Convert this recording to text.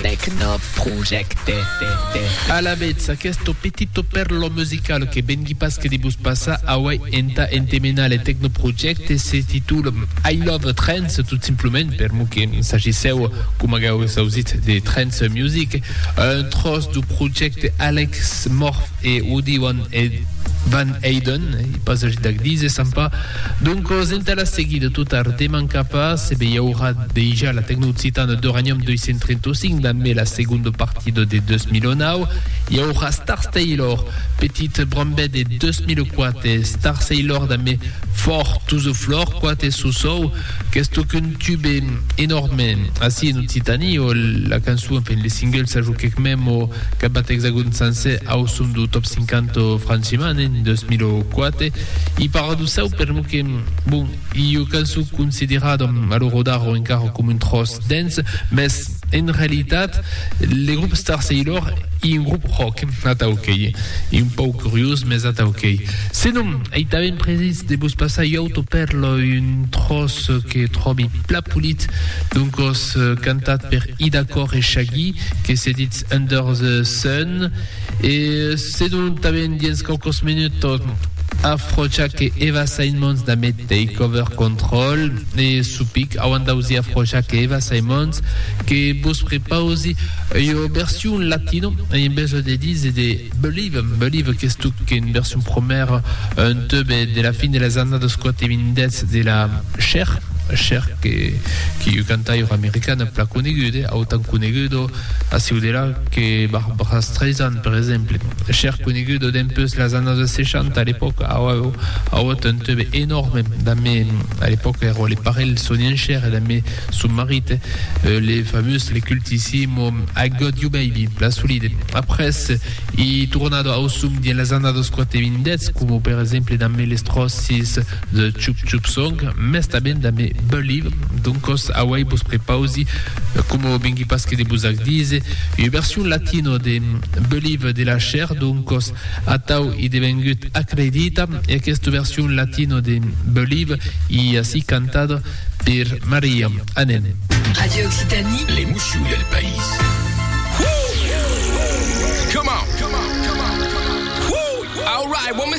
Tecnoprojecte. Alavetz, aqueste petito pèrlo musical que vengui pas que de vos passar aué entà entemenar le Tecnoprojecte se titula I Love Trance, tot simplement per mos que sagissèu, coma qu'auetz ausit, de trance music, un tròç dau projecte Alex Morph. E o diuan eth Van Eyden, ei pas agit d'ac díser, sap pas. Doncos, entà la seguida, tot ar deman capa, se be i aurà dejà la Tecnooccitana d'Uranium 235 damb la segonda partida de 2009. I aurà Stars Taylor, petit brambet de 2004, e Stars Aylor damb Fort Tousoflor, quate sosau. Qu'es tòc un tube enòrme ací en Occitània, o la cançon, enfin le single s'a joquèc mèm o cabat Exagòn sancèr au son dau Top 50 franchement en 2004. I paradossau peremont que, bon, i ua cançon considerada a lo rodar o encara coma un tròç dens, mès, En realitat, le grop Star Sailor ei un grop rock, atau qu'ei un pauc curiós, mes atau qu'ei. Senon, ei tanben precís de vos passar ua autopèrla, un tròç que tròbi plan polit d'un còs cantat per Ida Corr e Shaggy que se ditz Under the Sun, E sedon tanben dins quauquos minuts afrocha que Eva Symons da Me Takeover Control e Supic auan d'ausi afrocha que Eva Symons que vos prepausi ua version latino en besonh de dise de Believe, Believe que estuc en version promèra un tube de la fin de las annadas 80s de la Cher, Cher que qu'ei ua cantaira americana plan coneguda, autant coneguda A sieu de la que Barbra Streisand, per exemple, chèr coneguda dempeus las annadas 60, a l'epòca aueu auut un teube enòrme damb, a l'epòca èra le parelh son enchèr e damb son marit, le famós, le cultissimo I Got You Baby, la solide. Après, i tornada ausum dins las annadas quate-vindèths, coma per exemple damb Les Trossis, The Chup Chup Song, mès tanben damb Believe, doncos auei vos prepausi, coma vengui pas que de vos ac díser, ua version latino de Believe de la Cher, doncos atau i devengut Acredita, e aquesta version latino de Believe i ací cantada per Maria. Anem! Radio Occitanie. L'emoció del país. Whoo! Come on! Come on! Come on! Come on! Whoo! All right, what me